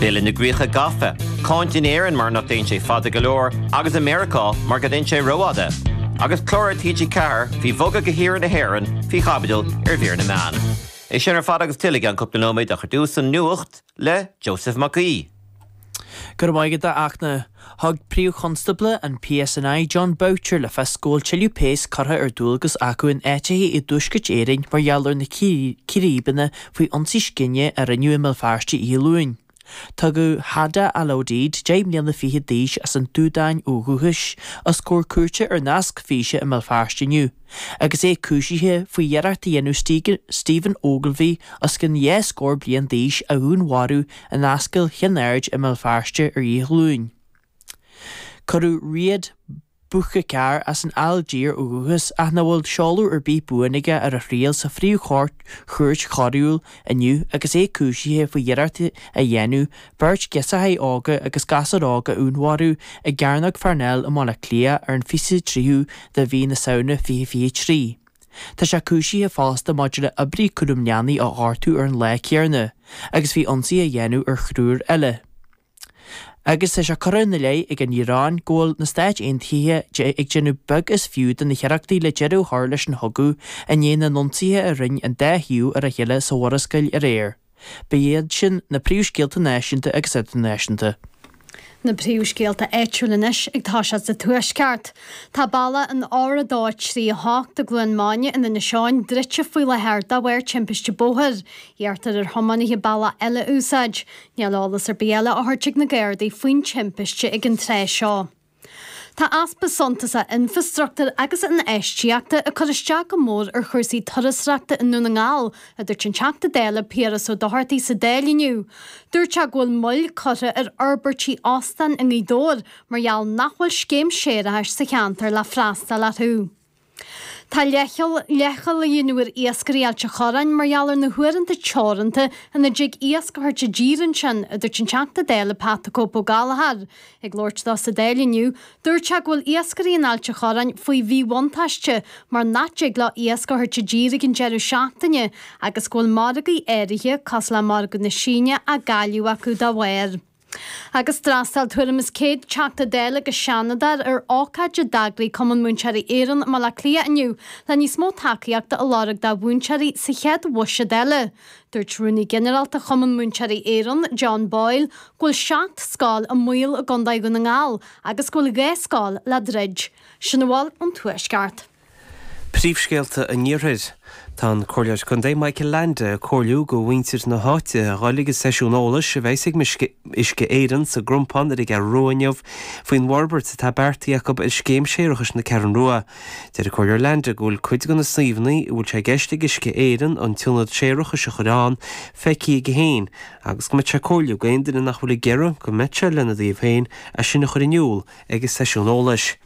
Bille na gcríocha gafa, cáint in Éirinn mar nach dtéann sé fada go leor agus i Meiriceá mar go dtéann sé rófhada, agus clár ar TG4 faoi bhogadh go hiarthar na hÉireann faoi chaibidil ar mhír na meán. É sin ar fad agus tuilleadh i gceann cúpla nóiméad ach ar dtús an nuacht le Joseph Mac Aoidh. Go raibh maith agat, a Fhachtna. Thug Príomh-Chonstábla an PSNI, Jon Boutcher, le fios go bhfuil tuilleadh péas curtha ar dualgas acu in áiteacha i dTuaisceart Éireann mar gheall ar na círéibeanna faoi ionsaí scine a rinneadh i mBéal Feirste Oíche Luain. Tugadh Hada al-Odeid, deich mbliana fichead d'aois, as an tSúdáin ó dhúchas, os comhair cúirte ar nasc físe i mBéal Feirste inniu. agus é cúisithe faoi iarracht a dhéanamh Stephen Ogilvie os cionn dhá scór bliain d'aois a dhúnmharú in Ascaill Chinn Aird i mBéal Feirste ar Oíche Luain. Cuireadh Riad Bouchaker as an Ailgéir ó dhúchas ach nach bhfuil seoladh ar bith buan aige ar a thriail sa phríomhchúirt chúirt choiriúil inniu agus é cúisithe faoi iarracht a dhéanamh beirt ghirseachaí óga agus gasúr óg a dhúnmharú i gCearnóg Pharnell i mBaile Átha Cliath ar an 23ú de mhí na Samhna 2023. Tá sé cúisithe fosta maidir le oibrí cúraim leanaí a ghortú ar an lá céanna agus faoi ionsaí a dhéanamh ar thriúr eile. Agus tá sé curtha ina leith ag an Iaráin go bhfuil na Stáit Aontaithe ag déanamh beag is fiú de na hiarrachtaí le deireadh a chur leis an chogadh i ndiaidh na n-ionsaithe a rinne an dá thaobh ar a chéile sa Mhurascaill aréir. Ba iad sin na príomhscéalta náisiúnta agus idirnáisiúnta. Na príomhscéalta áitiúil anois ag toiseacht sa Tuaisceart. Tá bealach an R238 i gCluain Maine in Inis Eoghain druidte faoi láthair de bharr timpiste bóthair. Iarrtar ar thiománaithe bealach eile a úsáid. Níl eolas ar bith eile á thabhairt ag na Gardaí faoin timpiste ag an tráth seo. Tá easpa suntasach infreastruchtúir agus infheistíochta ag cur isteach go mór ar chúrsaí turasóireachta i nDún na nGall, a dúirt an Teachta Dála Piaras Ó Dochartaigh sa Dáil inniu. Dúirt sé go bhfuil moill curtha ar fhorbairtí óstáin i nGaoth Dobhair mar gheall nach bhfuil scéim séarachais sa cheantar le freastal orthu. Tá leithcheal, leithcheal á dhéanamh ar iascairí Ailt an Chorráin mar gheall ar na huaireanta teoranta ina dtig iasc a thabhairt i dtír ansin, a dúirt an Teachta Dála Pat the Cope Ó Gallchóir. Ag labhairt dó sa Dáil inniu, dúirt sé go bhfuil iascairí in Ailt an Chorráin faoi mhíbhuntáiste mar nach dtig leo iasc a thabhairt i dtír ag an deireadh seachtaine agus go bhfuil margaí áirithe, cosúil le margadh na Síne, á gcailleadh acu dá bharr. Agus d'fhreastail tuairim is 100 Teachta Dála agus Seanadóir ar ócáid a d'eagraigh Cumann Múinteoirí Éireann i mBaile Átha Cliath inniu le níos mó tacaíochta a lorg do mhúinteoirí sa chéad bhuiséad eile. Dúirt Rúnaí Ginearálta Chumann Múinteoirí Éireann, John Boyle, go bhfuil seacht scoil i mbaol i gContae Dhún na nGall agus go bhfuil dhá scoil le druid. Sin a bhfuil ón Tuaisceart. Príomhscéalta an Iarthair. Tá an Comhairleoir Contae Michael Leainde ag comhairliú go mhuintir na háite a dhul ag an seisiún eolais a bheas ag Uisce Éireann sa gCrompán ar an gCeathrú Rua inniu faoin bhforbairt atá beartaithe acu ar Scéim Séarachais na Ceathrún Rua. Deir an Comhairleoir Leainde go bhfuil cuid de na suíomhanna a bhfuil sé i gceist ag Uisce Éireann an t-ionad séarachais a chur ann feicthe aige féin agus go mbeadh sé ag comhairliú go aon duine nach bhfuil ag iarraidh go mbeadh sé lena dtaobh féin é sin a chur in iúl ag an seisiún eolais.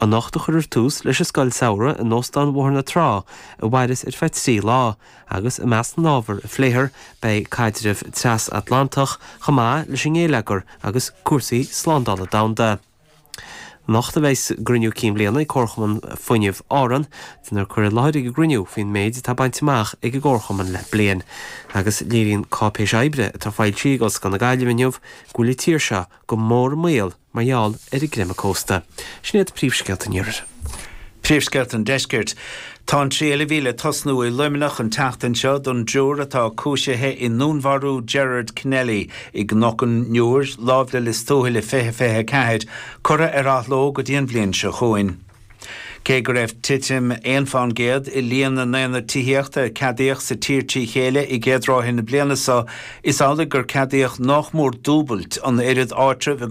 Anocht a chuirfear tús leis an Scoil Samhraidh in Óstán Bhóthar na Trá a mhaireas ar feadh trí lá, agus i measc na n-ábhar a phléifear beidh caidreamh tras-Atlantach chomh maith leis an nGéilleagar agus cúrsaí slándála domhanda. Anocht a bheas a gCruinniú Cinn Bliana ag Comharchumann Fuinnimh Árann, déanfar cur i láthair ag an gcruinniú faoin méid atá bainte amach ag an gComharchumann le bliain, agus léiríonn cáipéis oibre atá foilsithe ag Ollscoil na Gaillimhe inniu go bhfuil an tír seo go mór i mbaol mar gheall ar an gcreimeadh cósta. Sin iad príomhscéalta an iarthair. Príomhscéalta an deiscirt. Tá an triail a bhí le tosnú i Luimneach an tseachtain seo don dtriúr atá cúisithe i ndúnmharú Gerard Kennelly i gCnoc an Iúir, láimh le Lios Tuathail i 2024, curtha ar athló go dtí an bhliain seo chugainn. Cé go raibh titim aon fán gcéad i líon na n-aonad tithíochta a ceadaíodh sa tír trí chéile i gcéad ráithe na bliana seo, is amhlaidh gur ceadaíodh nách mór dúbailt an oiread áitreabh i